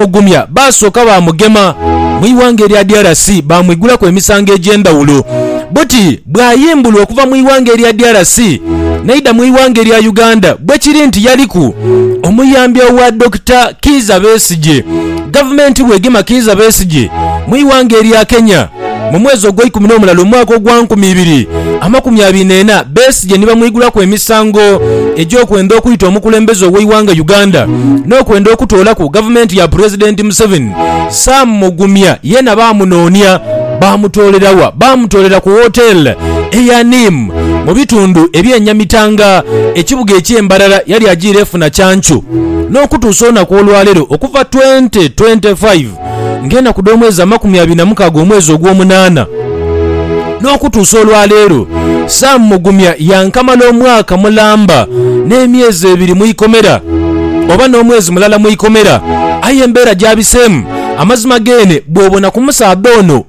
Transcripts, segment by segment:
okumugumya, baasooka baamugema mu ighanga erya DRC baamwigulaku emisango egy'endhawulo. Buti bw'ayimbulwa okuva mu ighanga erya DRC n'aidha mu ighanga erya Uganda bwe kiri nti yaliku omuyambi owa Dokita Kiiza Besigye. Gavumenti bw'egema Kiiza Besigye mu ighanga erya Kenya, Mu mwezi ogweikumi n'omulala omwaka ogwa nkumi ibiri amakumi abiri n'ena, Besigye ni bamwigulaku emisango egy'okwenda okwita omukulembeze ow'eighanga Uganda n'okwenda okutoolaku gavumenti ya Pulezidenti Museveni. Sam Mugumya yeena baamunoonia. Baamutoolera wa? Baamutoolera ku wooteele eya Neem mu bitundu eby'e Nyamitanga, ekibuga eky'e Mbarara yali ajiire efuna kyancu n'okutuusa olunaku olwaleero okuva twenty twenty five. ng'enaku dh'omwezi amakumi abiri na mukaaga omwezi ogw'omunaana, n'okutuusa olwa leero, Sam Mugumya yankamala omwaka mulamba n'emyezi ebiri mu ikomera, oba n'omwezi mulala mu ikomera, aye embeera gy'abiseemu, amazima geene bw'obona ku musaadha ono.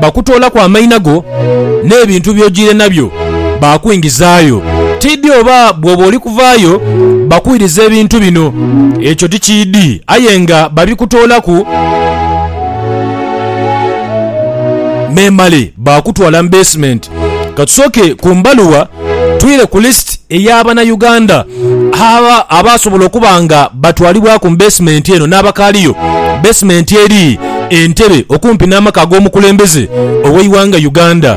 bakutoolaku amaina go n'ebintu by'ojiire nabyo baakwingizaayo. Tiidhi oba bw'oba oli kuvaayo bakwirize ebintu bino, ekyo tikiidhi, aye nga babikutoolaku memale baakutwala mu beesimenti. Ka tusooke ku mbaluwa. Twire ku list eya bana Uganda abaasobola okuba nga batwalibwaku mu beesimenti eno n'abakaaliyo. Beesimenti eri e Ntebe okumpi n'amaka ag'omukulembeze ow'eighanga Uganda.